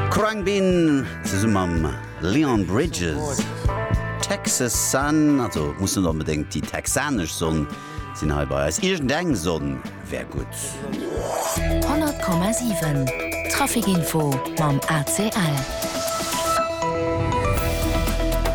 Khruangbin zesum mam Leon Bridges. Texas Sun, also muss net onbedéngt déi texanesch Sonn sinn hei bei eis. Iergend eng Sonn wär gutt. 100,7 Traficinfo mam ACL.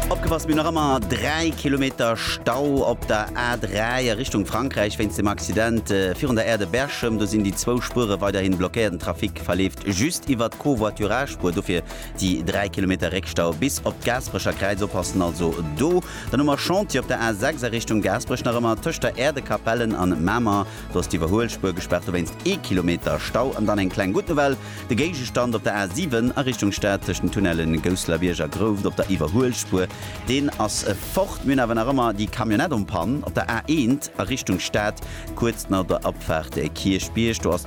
Opgepasst, mir nach ëmmer 3 Kilometer Stau op der A3 a Richtung Frankräich wéinst dem Accident virun der Aire de Berchem. Do sinn déi zwou Spuere weiderhin blockéiert. Trafic verleeft just iwwert d'Covoiturage-Spuer, dofir déi 3 Kilometer Réckstau bis op d'Gaasperecher Kräiz. Oppassen also do. Dann hu mer Chantier op der A 6 a Richtung Gaasperech, nach ëmmer tëscht der Äerdekapellen an Mamer. Do ass d'Iwwerhuelspuer gespaart, dowéinst ee Kilometer Stau. An dann eng kleng gutt Nouvelle, de Géigestand op der A 7 a Richtung Stad tëscht den Tunnelle Gousselerbierg a Grouft op der Iwwerhuelspuer, deen ass fort. Mir hunn awer nach ëmmer déi Camionnette en panne op der A 1 a Richtung Stad, kuerz no der Abfahrt Kierchbierg. Do ass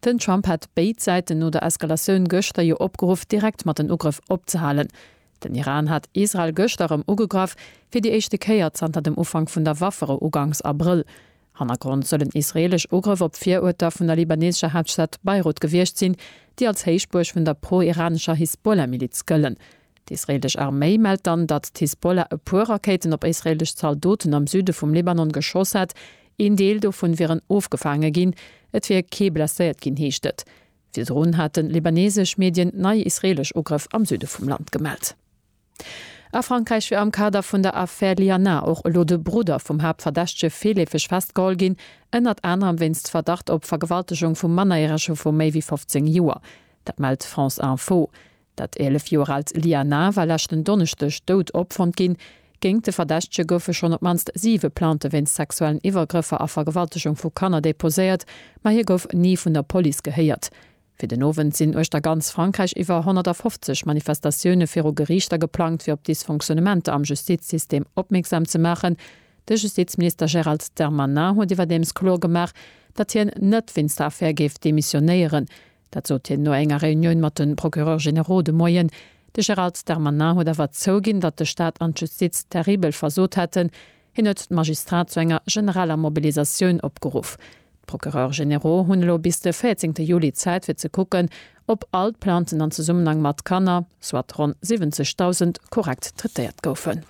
Den Trump hat béid Säiten no der Eskalatioun gëschter jo opgeruff, direkt mat den Ugrëff opzehalen. Den Iran hat Israel gëschter erëm ugegraff, fir déi éischte Kéier zanter dem Ufank vun der Waffere uganks Abrëll. Hannergrond soll en israeelesch Ugrëff op d'Viruerter vun der libaneesescher Haaptstad Beirut gewiescht sinn, déi als Héichbuerg vun der pro-iranescher Hisbollah-Miliz gëllen. D'israeelesch Arméi mellt dann, datt d'Hisbollah e puer Rakéiten op israeelesch Zaldoten am Süde vum Libanon geschoss hätt. Een Deel dovun wieren ofgefaange ginn. Et wier kee blesséiert ginn, heescht et. Virdrun haten libaneesesch Medien nei israeelesch Ugrëff am Süde vum Land gemellt. A Frankräich wier am Kader vun der Affär Lianin och elo de Brudder vum Haaptverdächtege virleefeg festgeholl ginn, ënnert anerem wéinst Verdacht op Vergewaltegung vu Mannereresche vu méi wéi 15 Joer. Dat mellt France Info. Dat 11 Joer aalt Liana war leschten Donneschdeg dout opfonnt ginn. Géingt de Verdächtege goufe schonn op d'mannst siwe Plainte wéinst sexuellen Iwwergrëffer a Vergewaltegung vu Kanner deposéiert, ma hie gouf ni vun der Police gehéiert. Fir den Owend sinn uechter ganz Frankräich iwwer 150 Manifestatioune viru Geriichter geplangt, fir op Dysfonctionnementer am Justizsystem opmierksam ze maachen. De Justizminister Gérald Darmanin huet iwwerdeems kloer gemaach, datt hien net wéinst der Affär géif demissionéieren. Dat sot hien no enger Reunioun mat de Procureurs généraux de Moien. De Gérald Darmanin huet awer zouginn, datt de Staat an d'Justiz terribel versot hätten. Hien huet d'Magistrat zu enger generaler Mobilisatioun opgeruff. D'Procureurs généraux hunn elo bis de 14 Juli Zäit fir ze kucken, ob all d'Plainten an Zesummenhang mat Kanner, soit ronn 70.000, korrekt traitéiert goufen.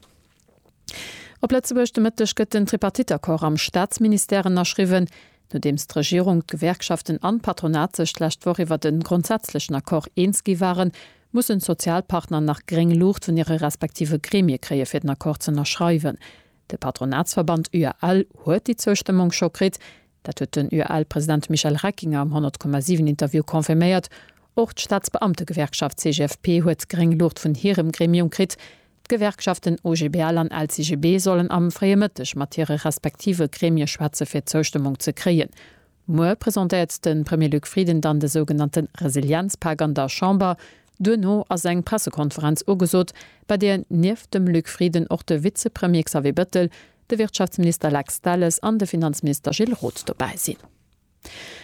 Op Lëtzebuerg de Mëtteg gëtt den Tripartite-Accord am Staatsministère ënnerschriwwen. Nodeems d'Regierung, d'Gewerkschaften an d'Patronat sech d'lescht Woch iwwert e grondsätzlechen Accord eens gi waren, mussen d'Sozialpartner nach gréng Luucht vun hire respektive Gremie kréie fir den Accord z'ënnerschreiwen. De Patronatsverband UAL huet déi Zoustëmmung scho kritt. Dat huet den UAL-President Michel Reckinger am 100,7 Interview confirméiert. Och d'Staatsbeamtegewerkschaft CGFP huet gréng Luucht vun hirem Gremium kritt. D'Gewerkschaften OGBL an LCGB sollen am fréie Mëtteg mat hire respektive Gremie schwätze fir d'Zoustëmmung ze kréien. Muer presentéiert de Premier Luc Frieden dann de sougenannte Resilienzpak an der Chamber. Duerno ass eng Pressekonferenz ugesot, bei där nieft dem Luc Frieden och de Vizepremier Xavier Bettel, de Wirtschaftsminister Lex Delles an de Finanzminister Gilles Roth dobäi sinn.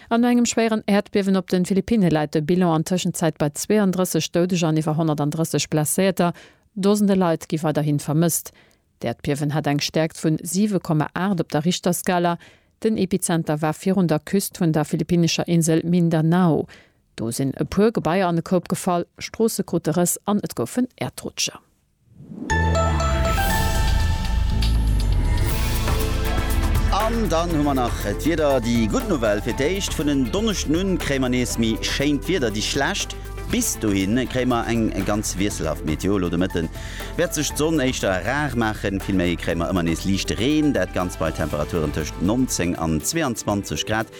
An no engem schwéieren Äerdbiewen op den Philippinne läit de Bilan an Tëschenzäit bei 32 Doudeger an iwwer 130 Blesséierter. Dosende Leit gi weiderhin vermësst. D'Äerdbiewen hat eng Stäerkt vun 7,8 op der Richterskala. Den Epizenter war virun der Küst vun der philippinnescher Insel Mindanao. Do sinn e puer Gebaier an e Koup gefall, Stroosse krute Rëss an et goufen Äerdrutscher. An dann hu mer nach d'Wieder. Déi gutt Nouvelle, Fir d'éischt vun en Donneschden un kréie mer nees méi schéint Wieder. Déi schlecht, Bis dohin kréie mer eng ganz wiesselhaft Météo. Elo de Mëtte wäert sech d'Sonn éischter rar maachen, vill méi kréie mer ëmmer nees liichte Reen. Dat Ganzt bei Temperaturen tëscht 19 an 22 Grad.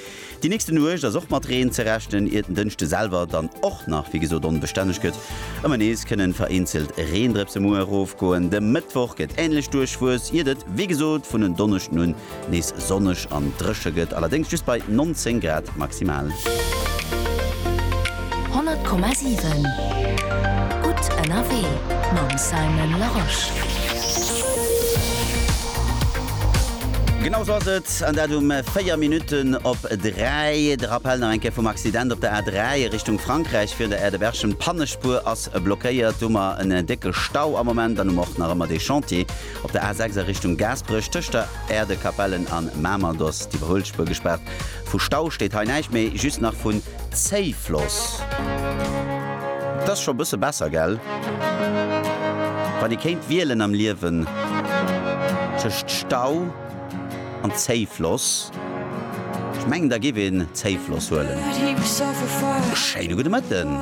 Déi nächste Nuecht ass och mat Reen ze rechnen, iert den Dënschde selwer dann och nach wéi gesot onbestänneg gëtt. Ëmmer nees kënnen vereenzelt Reendrëpse muer erofgoen. De Mëttwoch gëtt änlech duerchwuess, iert et wéi gesot vun en Donneschden un nees sonneg an dréche gëtt, allerdéngs just bei 19 Grad maximal. 100,7 gutt ënnerwee mam Simon Larosche. Genau sou ass et. An dat um 4 Minutten op 3. De Rappell nach eng Kéier vum Accident op der A3 a Richtung Frankräich, Virun der Aerdebergem. D'Pannespuer ass blockéiert. Do hu mer en décke Stau am Moment. Dann hu mer och nach ëmmer dee Chantier op der A6 a Richtung Gaasperech, tëscht der Aerdekapellen an Mamer. Do ass d'Iwwerhuelspuer gespaart. Vu Stau steet hei näischt méi, just nach vun Zéifloss. Et ass scho e bësse besser, gell? Wann ee kéint wielen am Liewen tëscht Stau. An Zéifloss? Ech mengen da giff een Zéifloss huelen. Schéine gudde Mëtten.